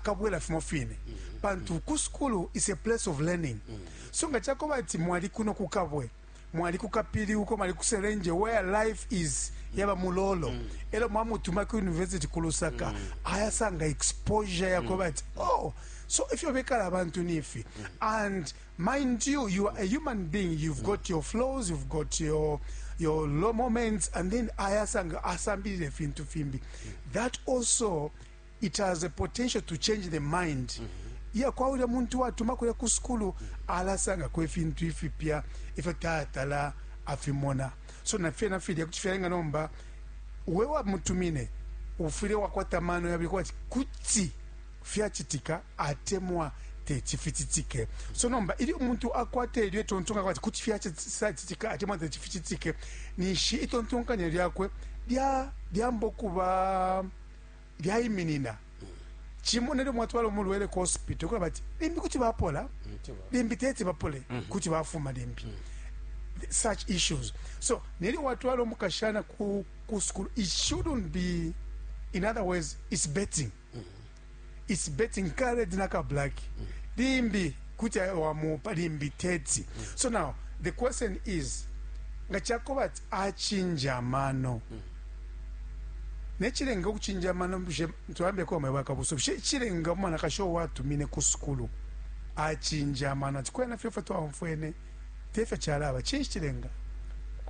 kabwela fimo fine pantu ku sukulu is a place of learning so nga cakoba ati mwali kuno ku kabwe mwali ku kapili uko mwali ku serenje where life is yaba mulolo mm. elo mwamutuma ku university ku lusaka mm. ayasanga exposure yakoba ati mm. oh so if you're bekala abantu nifi mm. and mind you you are a human being you've mm. got your flaws you've got your your low moments and then ayasanga asambilile fintu fimbi mm. that also It has a potential to change the mind iya kwa ulya muntu watuma kulya ku sukulu alasangako ifintu ifipya ifyo tatala afimona so na fyena filya kuti fyalenga nomba we wamutumine ufwile wakwata amano yabili kuba ati kuti fyacitika atemwa teti ficitike so nomba ilyo umuntu akwata ilyo itontonkanya ati kuti fyacitika atemwa teti ficitike ninshi itontonkanya lyakwe lya- lyamba ukuba lyaiminina cimo nelyo mwatwala umulwele ku hospital kulaba ati limbi kuti bapola limbi teti bapole mhm. kuti bafuma limbi mhm. such issues so nelyo watwala umukashana ku, ku school it shouldn't be in other words it's betting mhm. it's betting kared naka black limbi kuti wamupa limbi teti so now the question is nga chakoba acinja amano necilenga ukucinja amano bushe tulambe kwa mwe bakabuso bushe icilenga umwanakashi uwo watumine ku sukulu acinja amano ati kwena fye fwe twaumfwene te fyo calaba cinshi cilenga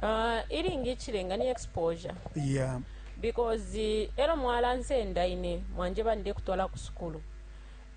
Ah, ilingi icilenga ni exposure ya because eh, elo mwalansenda ine mwanjeba ndekutwala ku sukulu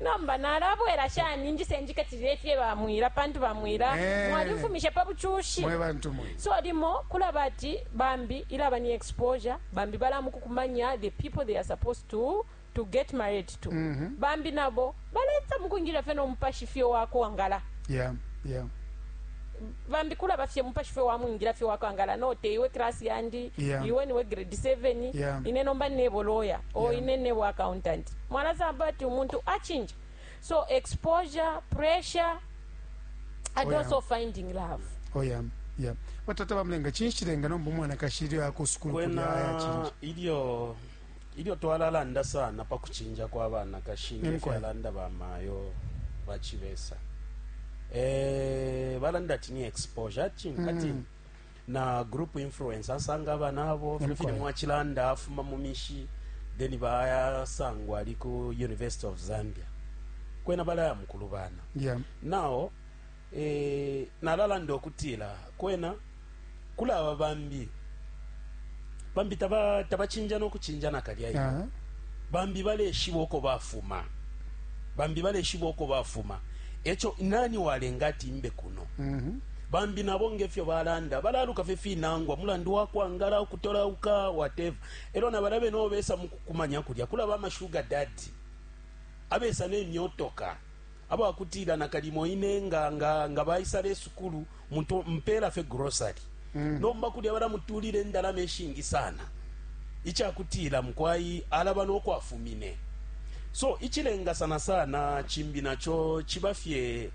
Nomba nalabwela shani injise njikatilile ifye ba mwila pantu ba mwila eh. mwali mfumishe pa buchushi mwe bantu mwe so limo kula bati bambi ilaba ni exposure bambi bala mukukumanya the people they are supposed to to get married to mm -hmm. bambi nabo baleta mukungira fe no mupashi fye wako wangala yeah yeah bambi kula bafye mupashi fe wamwingira fye wako angala no te iwe class yandi yeah. iwe niwe grade 7 yeah. ine nomba nebo lawyer o yeah. ine nebo accountant mwalasamb but umuntu achinja so exposure pressure i oh, don't so finding love oh, yeah. Yeah. batata bamulenga chinshi chilenga nomba umwanakashi ilyo akusukulu kwena ilyo ilyo twalalanda sana pa kuchinja kwa banakashi ngefyalanda bamayo bachibesa eh balanda ati ni exposure ati mm. na group influence asanga abana abo fino fine mwachilanda afuma mu mishi then bayasangwa ali ku university of zambia kwena balaya mukulubana yeah. nao eh, nalalanda okutila kwena kulaba bambi Bambi taba tabacinja no kucinja nakalya iyo. Aha. Bambi baleshiba uko bafuma. Bambi baleshiba uko bafuma. Eco nani walenga ati imbe kuno? Mhm. Bambi nabo ngefyo balanda balaluka fye finangwa mulandu wa kwangala ukutolauka whatever. Elo na balabe no besa mukukumanya kulya kulaba ama sugar daddy abesa ne myotoka aba kutila nakalimo ine nga nga nga baisa le sukulu muntu mpela fe grocery mm. nomba kulya bala mutulile ndalama eshingi sana icha kutila mkwai alaba no kwafumine so ichilenga sana sana chimbi nacho chibafye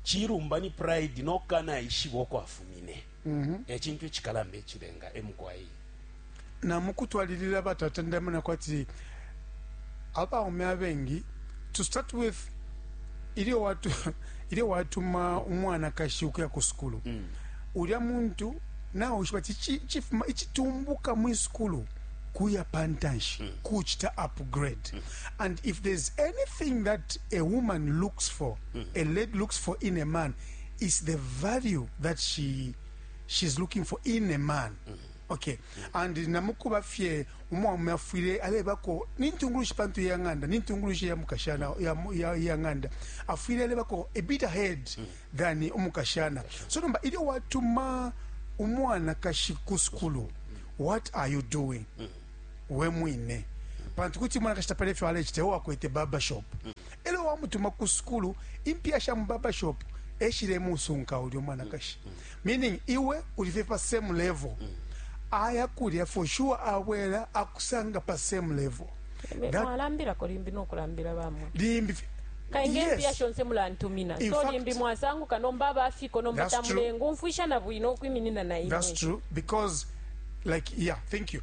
chirumba ni pride no kana ishibo kwafumine mm -hmm. e cintu icikalamba icilenga emukwai na mukutwalilila batata ndamona kwati abaume abengi to start with ilyo watu ilyo watuma umwanakashi ukuya ku sukulu mm. ulya muntu nawe ushiba ti chifuma ichitumbuka mu sukulu kuya pantanshi mm. kuchita upgrade mm. and if there's anything that a woman looks for mm. a lady looks for in a man is the value that she she's looking for in a man mm -hmm. okay mm -hmm. and namukuba fye umwaume afwile alebako nintungulushi pantu ya ng'anda nintungulushi ya mukashana ya, ya, ya ng'anda afwile alebako a bit ahead mm -hmm. than umukashana so nomba ilyo watuma umwanakashi ku sukulu mm -hmm. what are you doing mm -hmm. we mwine mm -hmm. pantu kuti umwanakashi tapala ifyo alechita ewakwete barbershop mm -hmm. E lyo wamutuma ku sukulu, impiya sha mu barber shop e shilemusunka ulya umwanakashi. Meaning, iwe uli fye pa same level. Aya kulya for sure abwela akusanga pa same level. Be- That- mwalambilako limbi nokulambila bamwe Limbi fye- kainge Yes. mpiya shonse mulantumina In so fact- limbi mwasanguka nomba abafiko nomba That's true. tamulenga umfwisha na bwino ukwiminina na That's imwe true because like yeah, thank you.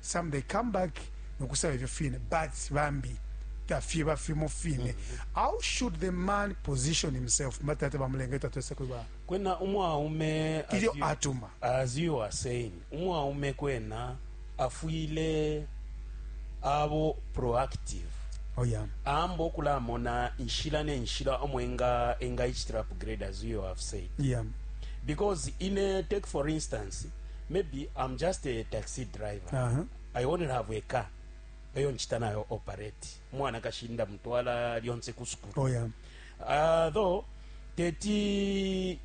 some they come back nokusaba ifyo fine but bambi tafyeba fimo fine mm-hmm. how should the man position himself matata bamulenga tatwese kuba kwena umwaume ilyo atuma as you are saying umwaume kwena afwile abo proactive oh yeah. amba okulamona inshila nenshila omo enga engaicitira upgrade as you have said yeah. because ine take for instance maybe i'm just a taxi driver uh -huh. i only have a car eyo nchita nayo operate mwana kashinda mutwala lyonse ku sukulu oh, yeah. uh, though teti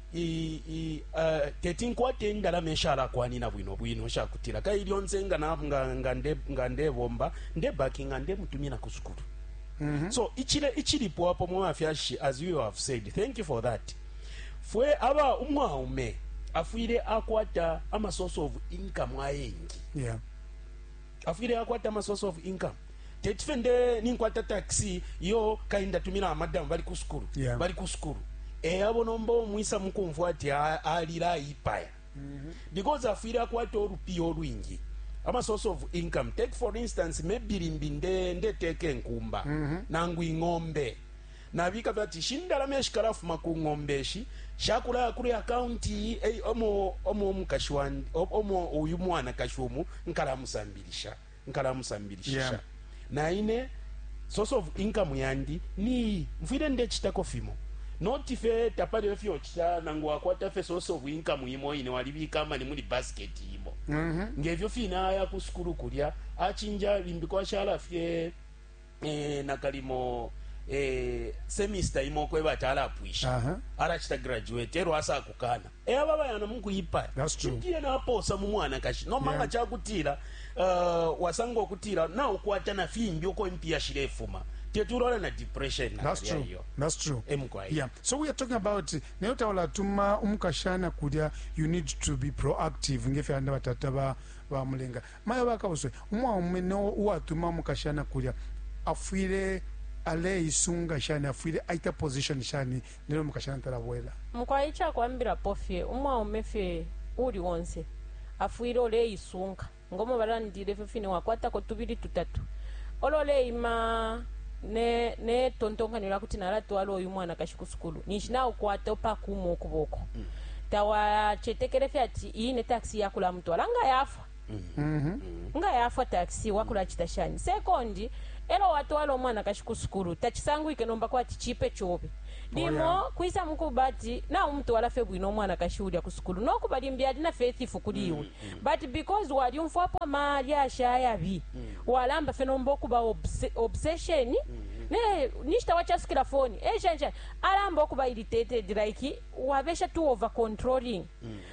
uh, teti nkwate endalama eshalakwanina bwino bwino shakutila kai lyonse nga nga nga nde nga ndebomba nde backing ande mutumina ku sukulu mm -hmm. so ichile ichilipo apo mwafyashi as you have said thank you for that Fwe aba umwaume afwile akwata ama source of income ayengi yeah. afwile akwata ama source of income teti fye nde ninkwata taxi yo kainda tumila amadamu bali ku sukulu yeah. bali ku sukulu eyabo eh, nomba omwisa mukumvwa ati alila ayipaya mm -hmm. because afwile akwata olupiya olwingi ama source of income take for instance maybe limbi nde ndeteka enkumba mm -hmm. nangu ing'ombe nabika fye ati ishi ndalama ishikalafuma ku ng'ombe ishi shakulaya kuli account iyi ei omo omo umukashi wandi o- omo uyu mwanakashi umu nkalamusambilisha Yeah. nkalamusambilishisha na ine source of income yandi niyi mfwile ndecitako fimo noti fye tapali efyo cita nangu wakwata fye source of income imo ine walibika amani muli basket imo ngevyo fine aya ku sukulu kulya acinja limbi kwashala fye eh, nakalimo eh, semester imo kweba ati alapwisha Aha. arachita graduate ero asakukana e aba bayana mukuyipaya That's true. ndiye naposa mu mwanakashi nomba Yeah. nga kyakutira uh, wasanga okutira naukwata na fimbi uko impiya shirefuma teturora na depression na That's kalya true. iyo. That's true. Emkwai. Yeah. So we are talking about nayo tawalatuma umukashana kulya you need to be proactive ngefyo anda batata ba bamulenga Mayo bakabuswe, umwaume no uwatuma umukashana kulya afwile aleisunga shani, afwile aita position shani nelyo umukashana talabwela? Mukwai icakwambilapo fye, umwaume fye uuli onse afwile uleisunga ngomo balandile ifyo fine, wakwatako tubili tutatu olo uleima ne ne tontonkanyo lyakuti nalatwala uyu mwanakashi ku sukulu ninshi naukwata upakuma ukuboko, tawacetekele fye ati iyi ine taxi yakulamutwala nga yafwa. nga yafwa taxi wakulacita shani sekondi elo watwala umwanakashi ku sukulu tacisangwike nomba kwati cipe cobe limo kwisa mukuba ati naumutwala fye bwino umwanakashi ulya ku sukulu nokuba limbi ali na faithifu kuli iwe but because walyumfwapo ama lyashi ayabi walamba fye nomba ukuba obse, obsession ne ninshi tawacasukila foni eshani shani alamba ukuba irritated like wabesha too over controlling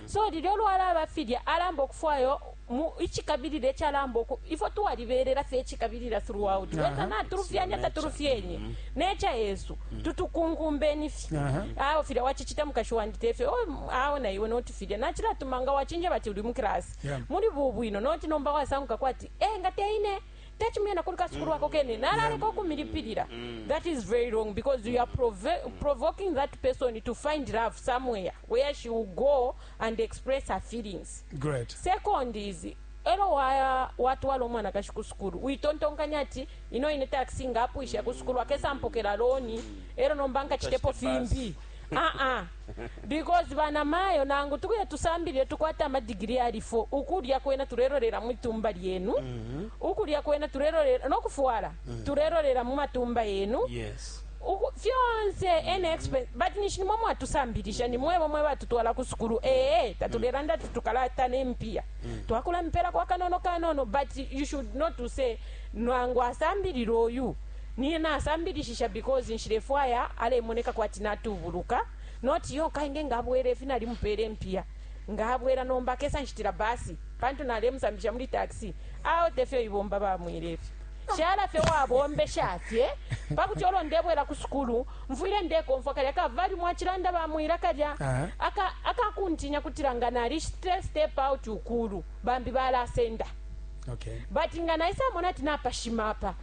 So lilyo lwalaba filya alamba ukufwayo mu icikabilila icalamba uku ifwe twalibelela fye icikabilila throughout whether natulufyanya tatulufyenye mm. necha yesu mm. tutukunkumbeni fye awo filya wachichita mukashi wandi tefye oh, awo na iwe noti filya nachilatumanga wachinje bati uli mu class muli bubwino noti nomba wasanguka kwati eh nga teine tacimye na kuli kasukulu ako kene nalaleka ukumilipilila that is very wrong because you are prove- provoking that person to find love somewhere where she will go and express her feelings Great. second is elo wa- watwala omwanakashi ku sukulu witontonkanya ati ino ine taxi nga apwisha ku sukulu akesampokela loni elo nomba nkacitepo Nkacite bus. fimbi a-a because banamayo nangu tukuye tusambilile tukwate amadigiri yali 4 ukulya kwena tulelolela mwitumba lyenu mm-hmm. ukulya kwena tulelolela nokufwala mm-hmm. tulelolela mumatumba yenu yes fyonse any expense but nishi nimwe mwatusambilisha nimwebo mwe batutwala ku sukulu ee tatulelanda ti tukalata nempiya mm. twakula mipela kwa kanono kanono but you should not to say nwangu asambilile oyu Nine nasambilishisha because nshilefwaya alemoneka kwati natubuluka, not yo kai nge nga abwela ifi nalimupela impiya nga abwela nomba akesa nshitila bus pantu nalemusambisha muli taxi awe tefyo ibomba ba mwele ifyo. Shala fye wabombesha fye pakuti olo ndebwela ku sukulu mfwile ndekomfwa kalya ka value mwacilanda ba Mwila kalya aka aka kuntinya kutila nga nalishita step out ukulu bambi balasenda but nga naisamona ati napashima apa.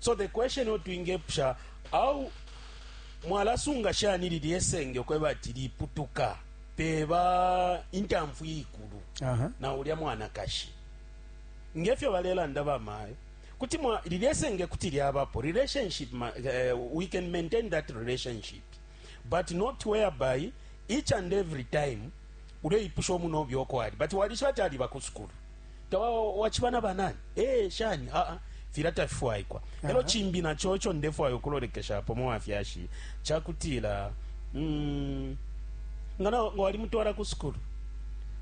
So the question yo twingepusha how mwalasunga shani lilye senge ukweba ati liputuka peba intamfu iikulu Aha. na ulya mwanakashi ngefyo balelanda bamayo kuti mwa lilye senge kuti lyabapo relationship ma, eh, we can maintain that relationship but not whereby each and every time uleipusha omunobyo oko ali but walishiba ati aliba ku sukulu Tawa wachiba na banani? Eh, shani? Ah, ah. Fila tafifwaikwa. Elo chimbi na chocho ndefwa yokulolekesha hapo mwa fyashi. Chakutila, mm, ngana wali mtuwara kuskuru.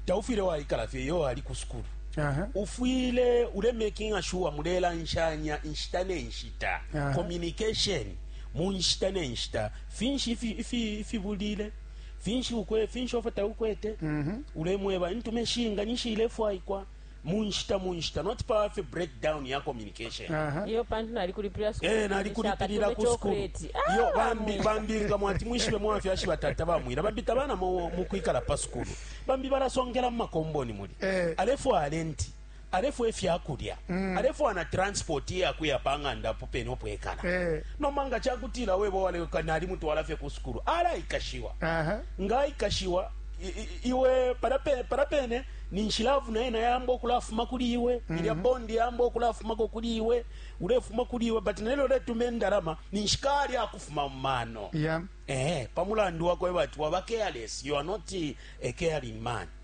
Taufile wa ikala fye, yo wali kuskuru. Aha. Ufwile ule making a sure mulela nshanya nshita ne nshita. Communication. Mu nshita ne nshita. Finshi ifi, ifi, ifi bulile. finshi ukwe finshi ofo taukwete mm -hmm. ulemweba intume shinga ninshi ilefwaikwa munshita munshita not power fe breakdown ya communication uh-huh. iyo pantu nali kuli priya school eh nali kuli pirira ku school ah, iyo bambi bambi nga mwati mwishibe mwafya shiba tata bamwira bambi tabana mu kwikala pa school bambi barasongera mu makomboni muri eh. alefwa alenti alefwaya ifya kulya, alefwaya na transipoti iya kuya pa ng'anda apo pene apo ekala. Nomba nga ca kutila webo waleka nalimutwala fye ku sukulu, alaikashiwa. Nga aikashiwa, iwe palya pene palya pene ninshi love na yena yaamba ukulafuma kuli iwe, ilya bond yaamba ukulafumako kuli iwe, ulefuma kuli iwe. But nelyo uletuma indalama, ninshi kaali akufuma mu mano pa mulandu wa kweba ati waba careless, you are not a caring man.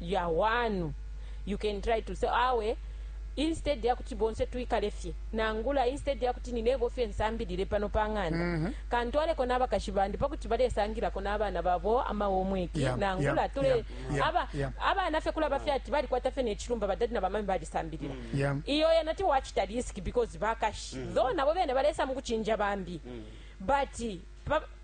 ya wanu. You can try to say, Awe, instead ya kuti bonse twikale fye, nangula instead ya kuti ni nebo fye nsambilile pano pa ng'anda, mm -hmm. kantwaleko na abakashi bandi pa kuti balesangilako na abana babo ama homework, yeah, nangula yeah, tule, yeah, yeah, aba, yeah. abana fye kulaba fye ati balikwata fye ne chilumba badadi na bamami balisambilila. Mm -hmm. yeah. Iyo ya nati wachita risk because bakashi. Mm -hmm. Though nabo bene balesa mukuchinja bambi. Mm -hmm. But, pa,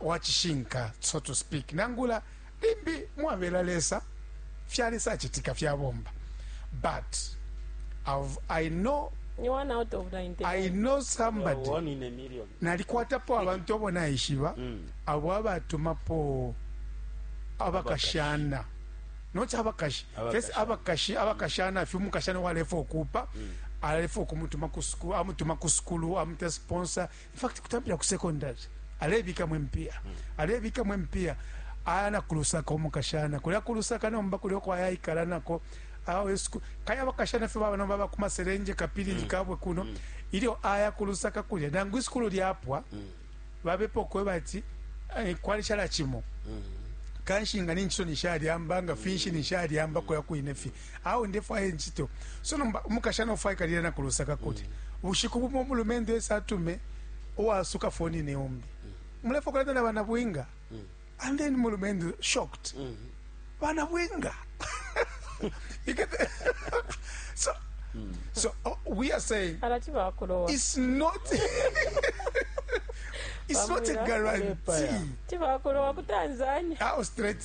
wa cishinka, so to speak, nangula limbi mwabela Lesa fyale sacitika fyabomba but I've, I know ni one out of 99 I know somebody one in a million nalikwatapo abantu abo naishiba mm. abo abatumapo abakashana noti abakashi fesi abakashi abakashana fye umukashana walefa okupa mm. alefa okumutuma kusukulu amutuma kusukulu amuta sponsor In fact, kutampila ku secondary, alebikamo impiya, alebikamo impiya, aya na kulusaka umukashana, kulya kulusaka nomba kulya uko ayaikala nako awesku kaya bakashana fye baba nomba bakuma serenje kapilili mm. kabwe kuno mm. ilyo aya kulusaka kulya nangu isukulu lyapwa mm. babepo kweba ati eh, kwali chala chimo mm. kanshi nga ninchiso nishalyamba nga finshi mm. nishalyamba mm. koya kuine fye Awe ndefwaya incito. So nomba umukashana ufwaika lila na ku Lusaka kulya. Bushiku bumo umulumendo esa atume uwasuka foni ni umbi. Mulefwa kulanda na bana bwinga? And then mulumendo shocked. Bana bwinga? You get the- so, so uh, we are saying alati bakulowa it's not it's not a Bamwira guarantee. Alepa ya. ti bakulowa ku tanzania How straight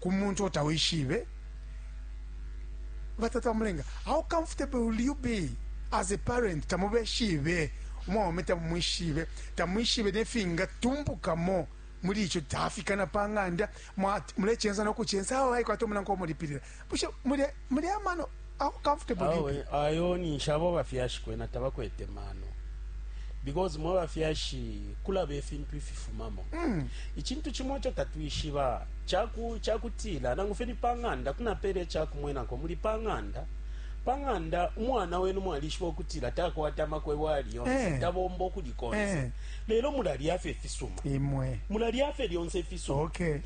ku muntu uo tawishibe batata bamulenga how comfortable will you be as a parent tamubeshibe umwaume tamumwishibe tamwishibe nefingatumbukamo muli ico tafikana pa ng'anda mulechensa nokuchensa awo aikwata omunanko omulipilila bushe Muli amano how comfortable do you Awe, be? ayo ninshi abo abafyashi kwena tabakwete mano because mwe abafyashi kulaba ifintu ififumamo Mm. icintu cimo ico tatwishiba caku- cakutila nangu fye ni pa ng'anda kunapela icakumwenako muli pa ng'anda pa ng'anda umwana wenu mwalishiba ukutila takwata amakwebo ali yonse Eh. tabomba ukuli konse Eh. lelo mulalya fye ifisuma Imwe. mulalya fye lyonse ifisuma Okay.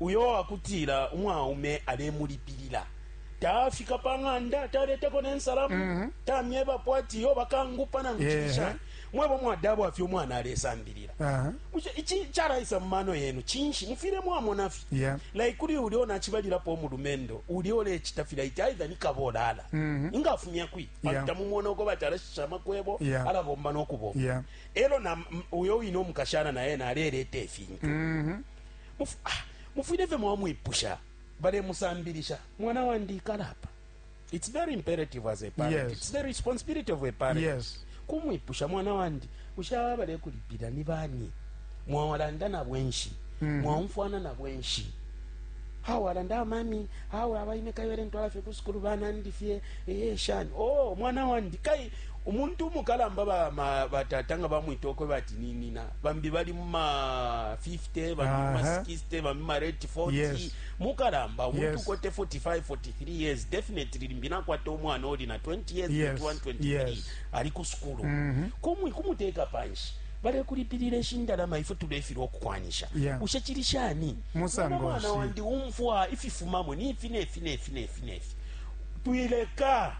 Uyo wakutila umwaume alemulipilila, tafika pa ng'anda, taletako ne nsalamu, mm -hmm. tamyebapo ati yo bakangupa nangu yeah. chishani mwebo mwadabwa fye umwana alesambilila uh -huh. ichi charaisa mumano yenu chinshi mufile mwamona fye yeah. like kuli uli ona chibalilapo mulumendo uli ole chita fila iti aidha nikabolala mm -hmm. inga afumya kwi yeah. tamumona uko batara shama kwebo yeah. ala bomba no kubo yeah. elo na uyo ino mukashana na yena alelete fintu mm -hmm. Mufwile fye mwamwipusha. Balemusambilisha, Mwana wandi, ikala apa. It's very imperative as a parent. Yes. It's the responsibility of a parent. Yes. Kumwipusha, Mwana wandi, bushe aba balekulipila ni bani? Mwawalanda nabo enshi? Mm. Mwaumfwana nabo enshi? Hawa alanda mami, hawa abaine kayole ntwala fye ku sukulu banandi fye. Eh, shani. Oh, mwana wandi, kai Umuntu umukalamba, ba ma, ba tata nga bamwita ukweba ati ni nina, bambi bali mu ma 50, bambi mu ma Aha. 60, bambi ma rate 40. Yes. Mukalamba, umuntu Yes. ukwete 45, 43 years, definitely limbi nakwata umwana uli na 20 years, Yes. 21, 23, Yes. ali ku sukulu. Kumwi kumuteka panshi. balekulipilira eshindalama ifwe tulefirwa okukwanisha Yeah. bushe kiri shani Musango Mwana mwana nshi? wandi umfwa ififumamo nifi nefi nefi nefi nefi twileka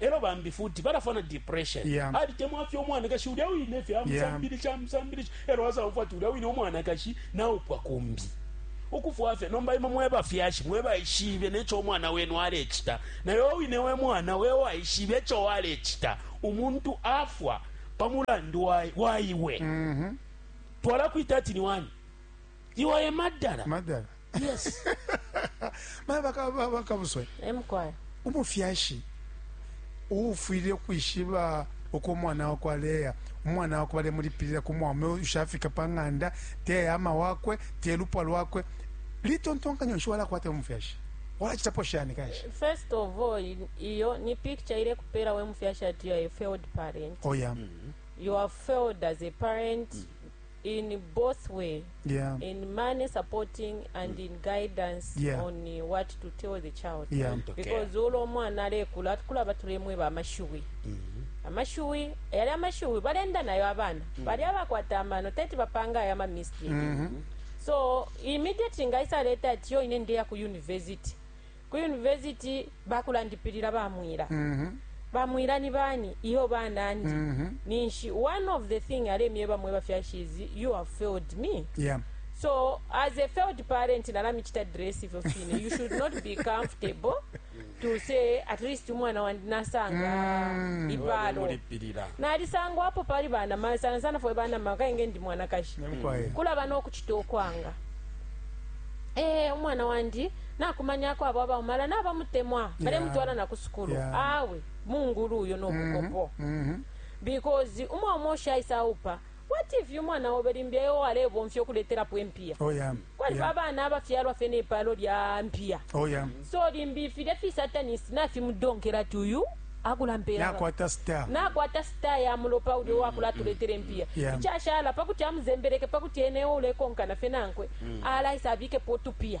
Elo bambi futi balafwa na depression. Yeah. Alitemwafye umwanakashi ulya winefye amusambilisha amusambilisha elo asaumfwa ati ulya wine umwanakashi naupwa kumbi. Ukufwafye nomba imwe mwebafyashi mwebaishibe necho umwana wenu alechita nayo wine wemwana wewaishibe echo walechita. Umuntu afwa pamulandu wa waiwe twalakwita ati niwani? Iwe emadala. Madala. yes mayo baka- ba- bakabuswe emkwaya umufyashi uufwile ukwishiba uko umwana wakwe aleya umwana wakwe balemulipilila ku mwaume ushafika pa ng'anda te ama wakwe te lupwa lwakwe litontonkanyo nshi walakwata umufyashi walacitapo shani kanshi first of all i- iyo ni picture ile kupera we mufyashi ati you are a failed parent oya you are failed as a parent in both way yeah. in money supporting and in guidance yeah. on uh, what to tell the child yeah. because ulo omwana alekula atukula batulemweba amashiwi mm -hmm. amashiwi yali amashiwi balenda nayo abana mm -hmm. bali abakwata amano teti bapanga ayo amamistake mm -hmm. so immediate ngaisa leta ati yo ine ndeya ku university Ku university bakulandipilila ba Mwila. Ba Mwila ni bani? Iyo ba nandi. Ninshi one of the thing alemyeba mweba fyashi is you have failed me. Yeah. So as a failed parent nalamichita dress ifyo fine. You should not be comfortable to say at least umwana wandi nasanga ipalo. Mulipilila. nalisangwapo pali banama sana sana fwe banama kainge ndi mwanakashi Kwaye. kulaba n'okuchita okwanga eh umwana wandi Nakumanyako abo abaume, ala nabamutemwa, balemutwala yeah. na ku sukulu yeah. Awe mungulu uyo no mm-hmm. bukopo mm -hmm. because umwaume ushaisa aupa what if uyu mwana wobe limbi eyo walebomfya okuletelapo empiya oh, yeah. kwaliba yeah. abana abafyalwa fye nepaalo lya mpiya oh, yeah. so limbi filya fisatanist nafimudonkela ti uyu akulampelanakwata star ya mulopa uli wakulatuletela empiya ichashala pakuti amuzembeleke pakuti enewo ulekonkana fye nankwe mm. alaisa abikepo otupiya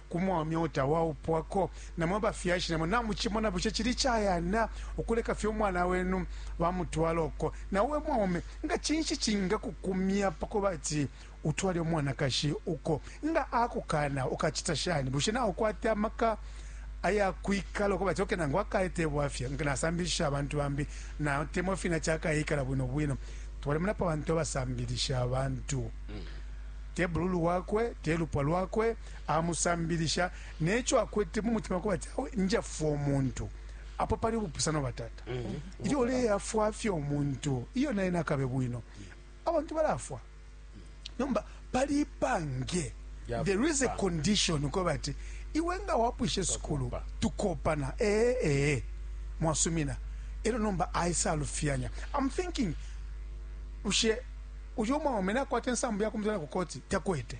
Ku mwaume uo tawaupwako, na mwe bafyashi namo namucimona. Bushe cili icayana ukuleka fye umwana wenu bamutwala uko? Na iwe mwaume, nga cinshi cingakukumya pa kuba ati utwale umwanakashi uko? Nga akukaana, ukacita shani? Bushe naukwata amaka aya kwikala ukuba ati okay nangu akaye te bwafya, nasambilishisha abantu bambi, natemwa fye nati akayeikala bwino bwino? Twalimonapo abantu abasambilisha abantu, te bululu wakwe, te lupwa lwakwe. amusambilisha ne co akwete mu mutima kuba ati awe njafwa umuntu apo pali ubupusano batata ilyo uleyafwa fye umuntu iyo naye nakabe bwino abantu balafwa nomba pali ipange Ya there is a kupanga. condition uko bati iwe nga wapwishe sukulu tukopana ee ee mwasumina ero nomba aisalufyanya i'm thinking ushe uyo mwaume nakwata ensambu yakumutwala ku koti takwete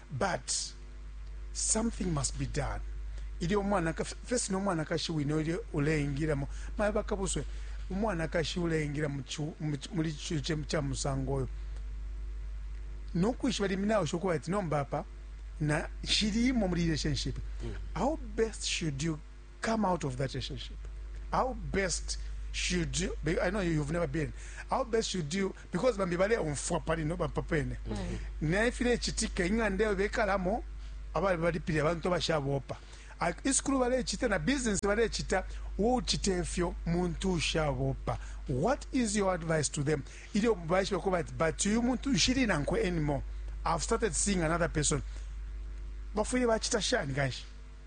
But something must be done ilyo umwanaka fesi no mwanakashi wine ulyo uleingilamo maye bakabuswe umwanakashi uleingila muli chuche cha musango oyo no kwishiba liminawo shokuba ati nomba apa na shilimo muli relationship mm. how best should you come out of that relationship how best should you be- i know you, you've never been how best should you because bambi baleumfwa pali no bampa pene naye filechitika ing'anda eyo bekalamo abali balipile abantu abashabopa A- isukulu balechita na business balechita wochita efyo muntu ushabopa what is your advice to them ilyo baishiba kuba ati but uyu muntu nshili nankwe anymore i've started seeing another person bafwile bachita shani kanshi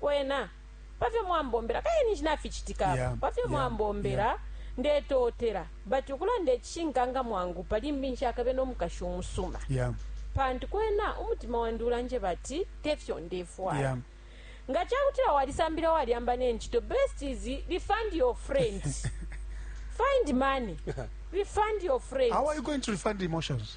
Kwena, pa fyo mwambombela, kaili ninshi naficitika apa, pa fyo mwambombela, ndetootela. But ukulanda icishinka nga mwangupa, limbi nshakabe no mukashi umusuma. Pantu kwena umutima wandi ulanjeba ati te fyo ndefwaya. Nga ca kutila walisambilila, walyamba ne ncito, best is refund your friend. Find money, refund your friend. How are you going to refund emotions?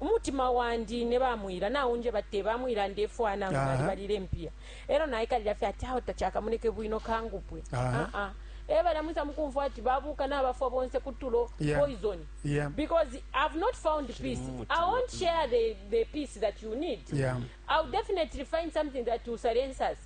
umutima wandi ne ba mwila naunjeba te ba mwila ndefwaya nangu Aha. nalibalile impiya elo naikalila fye ati aho tachakamoneke bwino kangupwe Aha. Ah, ah. e balya mwisa mukumfwa ati babuka nabafwa bonse kutulo Yeah. poison Yeah. because i've not found peace i won't share the, the peace that you need Yeah. i'll definitely find something that will silence us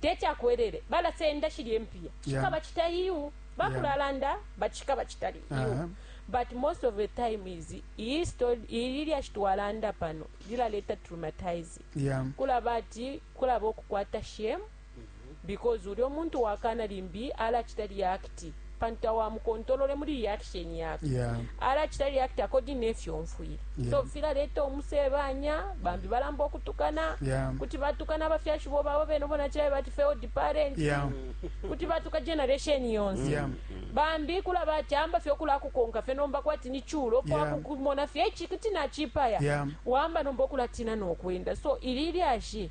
teti akwelele balasenda shilya impiya cikaba cita iu bakulalanda but cikaba cita iu but most of the time is iyi story ili lyashi twalanda pano lilaleta traumatize kulaba ati kulaba ukukwata shame because ulyo muntu wakana limbi alacita react pantu tawamukontolole muli reaction yakwe yeah. alachita react according nefyo omfwile yeah. so filaleta umusebanya bambi balamba okutukana yeah. kuti batukana abafyashi bo babo bene bonachila bati failed parent yeah. kuti batuka generation yonse yeah. bambi kula bati amba fye okulakukonka fye nomba kwati ni chulo kwakukumona yeah. fye ichi kuti nachipaya yeah. wamba nomba okulatina nokwenda so ili lyashi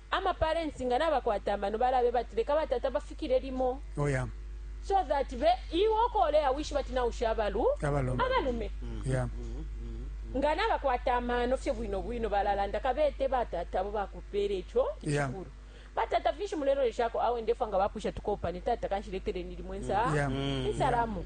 ama parents nga nabakwata amano balabeba ati leka batata bafikile limo oh yeah so that be iwe uko uleya wishiba ati nausha abalu Abalume. abalume yeah nga nabakwata amano fye bwino bwino balalanda kabete batata abo bakupeela ico Yeah. icikulu batata finshi muleloleshako awe ndefwa nga bapwisha tukopane tata kanshi leteleni limwe nsa Yeah. insalamu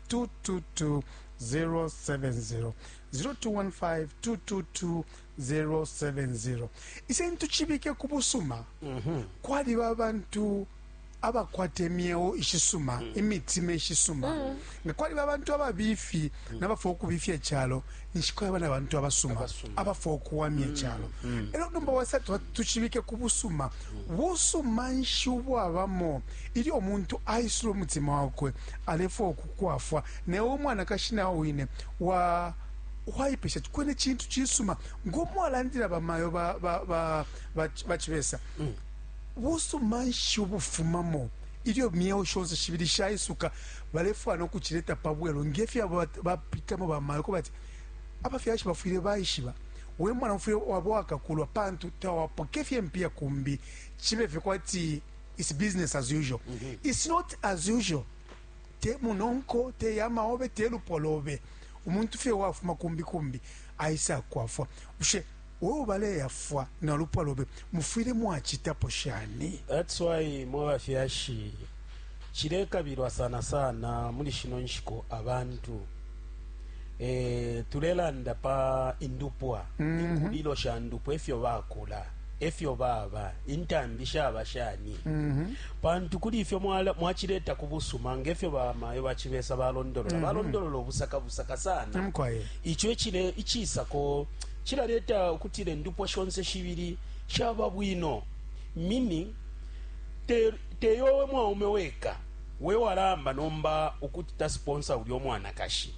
021522270 021522270 isentu chibike kubusuma mm -hmm. kwali babantu abakwata emyeo ishisuma mm. imitima ishisuma mm. nga kwaliba abantu ababifi mm. nabafuna ukubifya icalo ninshi kwaba na bantu abasuma Abasuma. abafwa ukuwamya icyalo ero nomba wasa tu- tucibike ku busuma busuma nshi ubwabamo ilyo omuntu aisula umutima wakwe alefwa ukukwafwa newe umwanakashi nawe wine wa waipesha ati kwene cintu cisuma ngomwalandila bamayo ba- ba- ba- ba- bacibesa busuma nshi ubufumamo ilyo myeo shonse shibili shaisuka balefwaya no kucileta pa bwelu nge fyo abo bapitamo bamayo kuba ati, Abafyashi bafwile baishiba, we mwana ufwile waba uwakakulwa pantu tawapoke fye impiya kumbi cibe fye kwati it's business as usual. It's not as usual. Te munonko, te yama obe, te lupwa lobe. Umuntu fye uwafuma kumbi kumbi aisakwafwa. Bushe We ubaleyafwa na lupwa lobe mufwile mwacitapo shani? That's why mwe bafyashi cilekabilwa sana sana muli shino nshiku abantu eh, tulelanda pa indupwa inkulilo sha ndupwa efyo bakula efyo baba intambi shaba shani pantu kuli ifyo mwala- mwacileta ku busuma ngefyo bamayo bacibesa balondolola balondolola ubusaka busaka sana Mkwaye. ico icile icisako Cilaleta ukutila indupwa shonse shibili shaba bwino, meaning, te te yowe mwaume weka wewalaamba nomba ukuti ta sponsor ulya umwanakashi,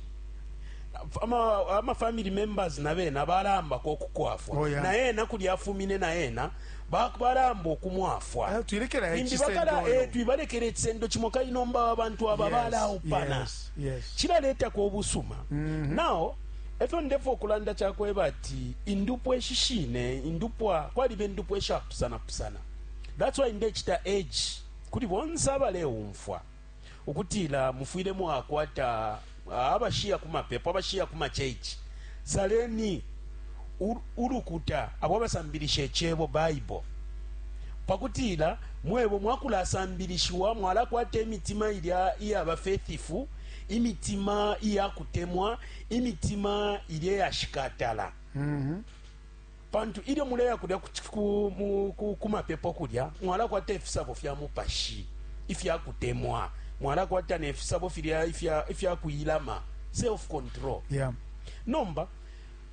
ama ama family members nabena balaambako ukukwafwa Oh, yeah. naena kulya afumine naena ba- balaamba ukumwafwa Ah, twilekela Limbi icisendo bakala, uyu. eh, twibalekela icisendo cimo kali nomba abantu aba Yes, balaupana yes, yes. cilaletako obusuma nao Efyo ndefwo kulanda cakweba ati indupwa ishishine indupwa kwaliba indupwa ishapusana pusana that's why ndecita urge kuli bonse abaleumfwa ukutila mufwile mwakwata abashiya ku mapepo abashiya ku ma church saleni ulukuta abo abasambilisha icebo bible pakutila mwebo mwakulasambilishiwa mwalakwata imitima ilya iyaba faithful imitima iya kutemwa imitima ilya yashikatala mm -hmm. pantu ilyo muleya kulya ku mapepo kulya mwalakwata ifisabo fya mupashi ifya kutemwa mwalakwata nefisabo filya ifya kuilama self control yeah. nomba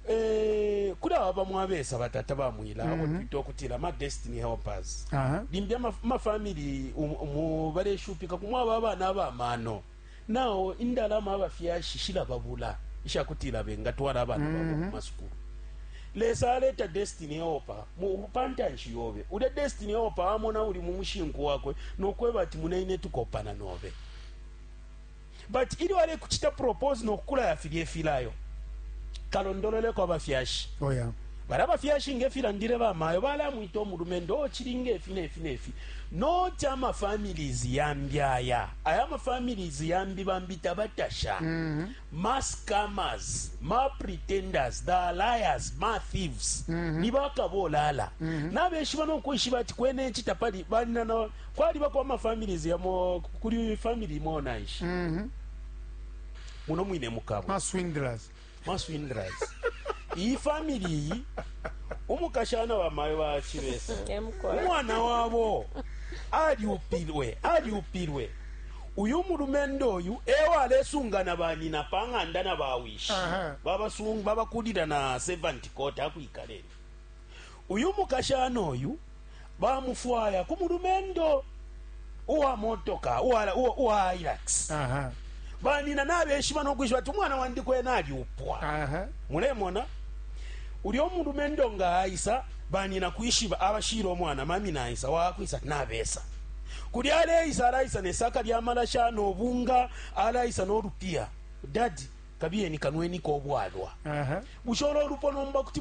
Eh, kuli aba bamo abesa batata bamwila mm -hmm. abo mhm. twita okutila ma destiny helpers uh -huh. limbi amafamili um, umu baleshupika kumwaba abana abamano nao indalama abafyashi shilababula ishakutila bengatwala abana mm -hmm. babo mhm. kumasukulu lesa aleta destiny helper pantanshi yobe ulya destiny helper amona uli mumushinku wakwe nokweba ati munaine tukopana nobe But ilyo alekuchita propose no kukulaya filya ifilayo, kalondololeko abafyashi. Oh, yeah. Bali abafyashi nge filandile bamayo balamwita omulumendo ochili oh, nge fi ne fi ne fi. Noti ama families yambi aya. Aya ama families yambi bambi tabatasha. Mm -hmm. Ma scammers, ma pretenders, the liars, ma thieves. Mm -hmm. Ni bakabolala. Mm -hmm. Nabeshiba no kwishiba ati kwene chitapali bali na Kwalibako ama families yamo kuli family imo na nshi mm -hmm. muno mwine mukabo ma swindlers ma swindlers iyi family iyi umukashana wa mayo ba chibesa umwana wabo aliupilwe aliupilwe uyu mulumendo uyu ewa alesungana banyina pa ng'anda na bawishi babakulira na 70 kota akwikaleni Uyu mukashana uyu bamufwaya ku mulumendo uwa motoka uwa Hilux. Banina nabeshiba no kwishiba ati umwana wandi kwena alyupwa. Mulemona? Ulyo mulumendo nga aisa, banina kwishiba abashila umwana, Mami naisa. Wakwisa ati nabesa. Kulya aleisa, alaisa ne saka lya malasha no bunga, alaisa no lupiya. Dadi. Kabiyeni kanweniko ubwalwa. Bushe ulo lupo nomba kuti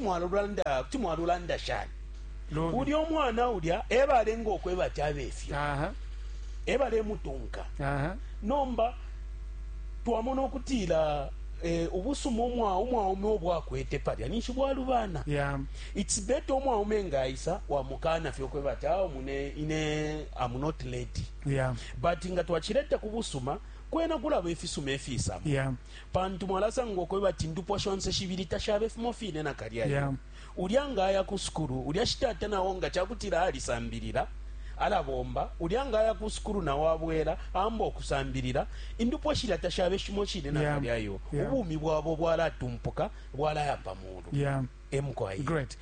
mwalulanda shani? Ulya umwana ulya ebalenga ukweba ati abe ifyo. Ebalemutunka. Nomba twamona ukutila eh, ubusuma umwaume ubo akwete palya ninshi bwalubana. Yeah. It's better umwaume nga aisa wamukana fye ukweba ati awo ah, mune ine I'm not lady. Yeah. But nga twachileta kubusuma Kwena kulaba ifisuma ifiisa mo yeah. pantu mwalasanga ukwebati indupwa shonse shibili tashaba ifimo fine nakalya iyo yeah. Ulya nga aya ku sukulu, ulya shi tata nao nga ca kutila alisambilila alabomba, ulya nga aya ku sukulu nao abwela aamba ukusambilila, indupwa shilya tashaba ishimo shine nakalya iyo yeah. yeah. Ubumi bwabo bwalatumpuka bwalaya pa muulu yeah. Emukwa iyi. Great.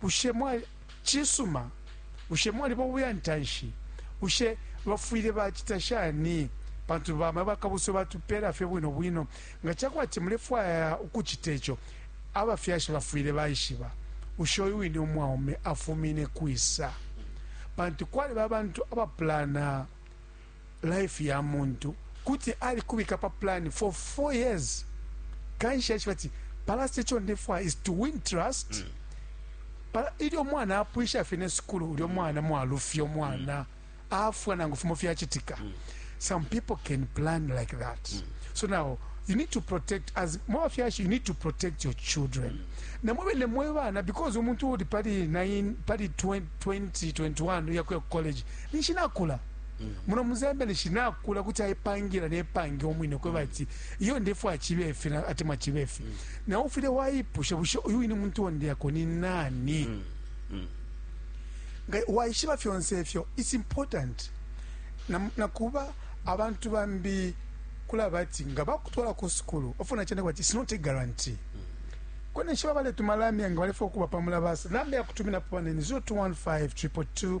Bushe mwa Cisuma, bushe mwaliba ubuyantanshi? Bushe bafwile bacita shani? Pantu bamayo bakabuswe batupela fye bwino bwino. Nga cakwati mulefwaya ukucita ico abafyashi bafwile baishiba, bushe uyu wine umwaume afumine kwisa? Pantu kwaliba abantu abapulana. life ya muntu kuti alikubika pa plan for 4 years kanshi achiba ati palast echo ndefwa is to win trust mm. pala ilyo mwana apwisha fine sukulu ulyo mwana mwalufya mwana mm. afwa nangu fimo fyachitika mm. some people can plan like that mm. so now you need to protect as more fyashi you need to protect your children mm. na mwe ne mwe bana because umuntu uli pali 9 pali 20 21 yakuya college nishina kula muno muzambia nishi nakula kuti aipangila nepange umwine kweba mm. ati iyo ndefu achibefi atemwa chibefi mm. na ufile waipusha bushe uyu ine muntu wonde yako ni nani mm. Mm. nga waishiba fyonse efyo it's important nakuba na abantu bambi kulaba ati nga bakutwala ku sukulu ofuna chende kwati it's not a guarantee mm. kwene nshiba baletumalamya nga balefa okuba pamulabasa namba yakutumina pone ni 0215 222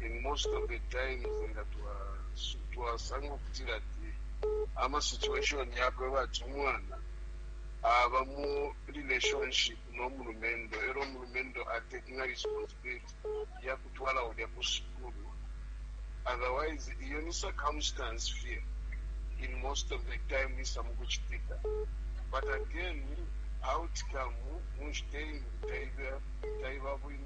in most of the times nga twasanga ukutila ati ama situation yakwe bati umwana aba mu relationship n'omulumendo era omulumendo atakinga responsibility yakutwala ulya ku sukulu otherwise iyo ni circumstance fear in most of the time isa mu kuchitika but again outcome munshiteyi taiba taiba bwino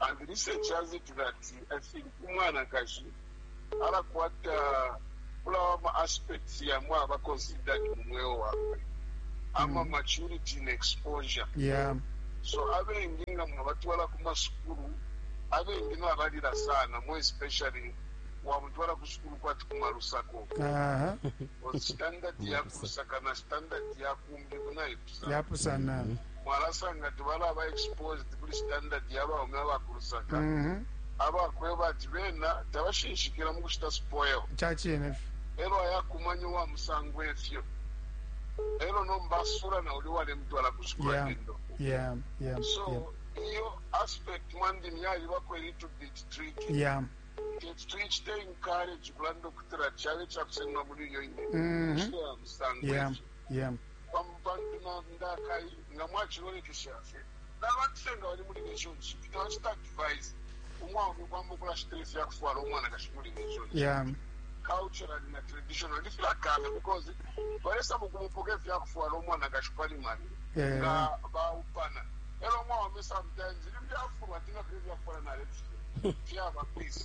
And research has it that I think umwanakashi alakwata kulawa ma aspects yamwe aba considered mu mweo wakwe ama maturity and exposure yeah so abengi nga mwabatwala ku masukulu abengi nabalila sana more especially wamutwala ku sukulu kwati ku malusako aha standard ya kulusaka na standard ya kumbi kunayi yapusana mwalasanga ati balaba exposed kuli standard ya baume aba ku Lusaka Mhm. abakweba ati bena tabashinshikila mu kushita spoil ca cine fye elo ayakumanya uwa musango efyo elo nomba asula na uli walemutwala ku sukulu Yeah. endo ya ya so iyo aspect mwandini yalibako little bit tricky ya kintu tuyicite encourage kulanda okutira kyalo kyakusenga muri iyo ine Mhm. kishira ya musango ya efyo ya Bamo bantu na ndakai, nga mwacilolekesha fye, naba fye nga bali mu relationship. Tabacita advise umwaume ukwamba ukulashita ifya kufwala umwanakashi mu relationship. Yeah. Culturally na traditionally filakana because balesaba ukumupoka ifya kufwala umwanakashi pali mali yeah. nga baupana elo umwaume sometimes limbi afulwa atinga fye ifya kufwala nalefifya fyaba peace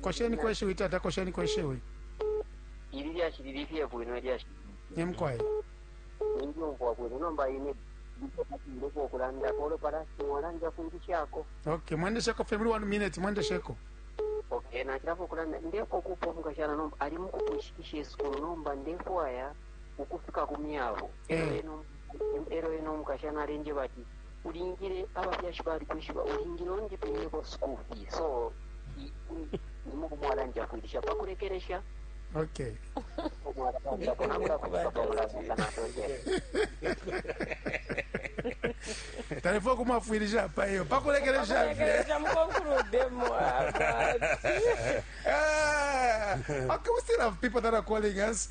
Kosheniko ishiwi tata, kosheniko ishiwi. Ili lyashi lili fye bwino ilyashi. Ni mukwai. Ninjumfwa bwino nomba ine ndiko kulanda kolo palasi mwalanja kwilishako. Okay, mwendesheko fye muli 1 minute mwendesheko. Okay, nachirapo kulanda ndeko kupo mukashana nomba ali mukupushikisha esukulu nomba ndefwaya ukufika ku myabo. Eh. Ero eno mukashana alenje bati ulingile abafyashi balikwishiba ulingile undipimineko school fee so nimukumwala njafwilisha pakulekelesha okay talefua kumwafwilisha apa iyo pakulekelesha Ah, okay, we still have people that are calling us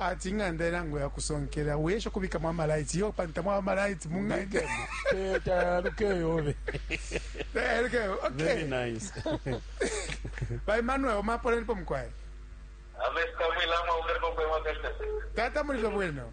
ati ing'anda ilango ya kusonkela wesha kubikamo amalaiti yo pantu tamwaba amalaiti mu ng'anda ba emmanuel omapolenipo mukwai tata mulive bwino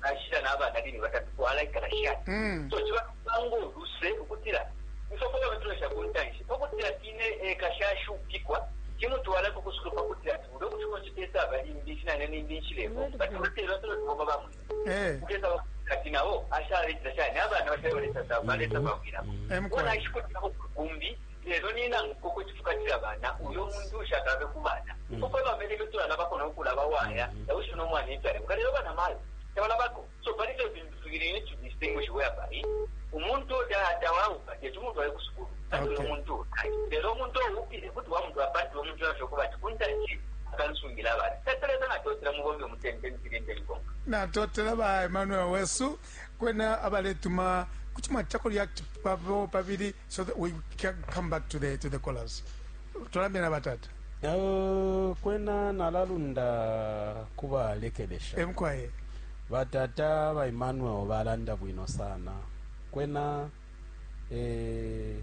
nashila nabana bine batatu twalaikala shani mm. so ciba kupanga uluse ukutila ifofona batulesha ku ntanshi pakutila tine eka shashupikwa cimutwala kukusukulu pakutila ati ule ukushiko cipesa abalimbi cinane nimbi nshilemo bati batela tulotiboma bamwe eh. ukesa kati nabo ashaletila shani abana bashayoletasa balesa bawiramo mm. mm. mm. ona ishikutila kumbi Lelo nina nkupo kwe tufukatila bana, uyo muntu ushakalabe ku bana. Nkupo kwe bamene ifyo tulalabako no kulaba waya, na wishibe no mwana ifyo alemuka. Lelo bana mayo, tabalabako. So pali fyo fintu fibili you need to distinguish whereby umuntu uyo ta tawaupa teti umutwale ku sukulu pantu uyo Okay. muntu ukai. Lelo umuntu oupile kuti wamutwala pantu uyo muntu yafye ukuba ati kuntanshi akansungila abana. Tatuleta natotela mubombe umutende mpilinde likonka. natotela ba emmanuel wesu Kwena abaletuma kuti mwacitako react pabo pabili so that we can come back to the, to the callers tulambe na batata Uh, kwena nalalunda kuba lekelesha emkwaye batata ba Emmanuel balanda bwino sana kwena eh,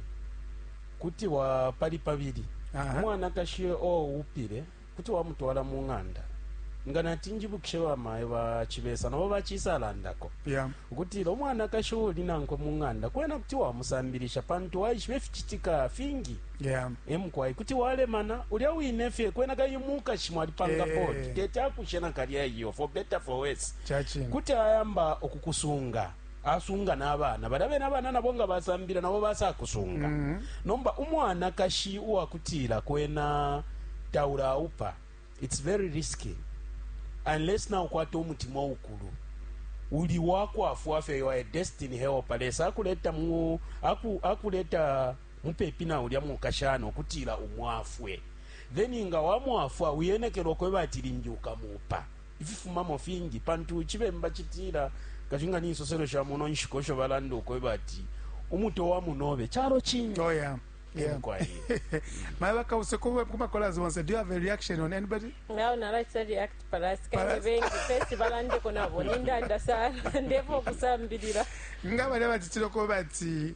kuti wa pali pabili Aha. umwanakashi o upile kuti wamutwala mu ng'anda nga nati njibukishe bamayo ba chibesa nabo bachisalandako yeah. ukutila umwanakashi uli nankwe mu ng'anda kwena kuti wamusambilisha pantu waishiba ifichitika fingi yeah. emukwai kuti walemana ulya wine fye kwena kai mukashi mwalipanga hey. Eh. bodi tete akushe nakalya iyo for better for worse kuti ayamba okukusunga asunga nabana balya bene abana nabo nga basambila nabo basakusunga mm -hmm. nomba umwanakashi uwakutila kwena taula aupa it's very risky unless na ukwata umutima ukulu uli wakwafwa fye you are a destiny helper lesa akuleta mu aku, akuleta mupepi na ulya mukashana okutila umwafwe then nga wamwafwa uyenekelwa kweba ati limbi ukamupa Ififumamo fingi, pantu Icibemba citila, Kashi nga ni nsoselo sha muno nshiku esho balanda ukweba ati, Umutwe wa munobe calo cingi. Oh, yeah. Yeah. My work out Sekuba Kuma Kolas once. Do you have a reaction on anybody? No, no, I said react Paras. Kaibengi festival and kona boninda ndasa ndevo kusambirira. Ngaba leba titiro ko bati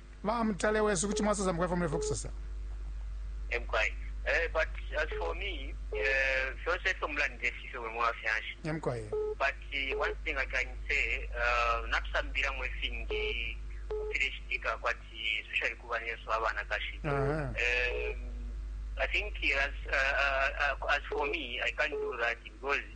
Ba Mutale wesu, kuti mwasosa mukwai ifyo mulefwaya ukusosa. Emkwai. Eh, but as for me, eh, fyonse ifyo mulandile fifyo buli mwafyanshi. Emkwai. But uh, one thing I can say, uh, natusambilamo ifingi fileshitika kwati especially ku banesu abanakashi. Uh -huh. um, I think as, uh, uh, as for me, I can't do that because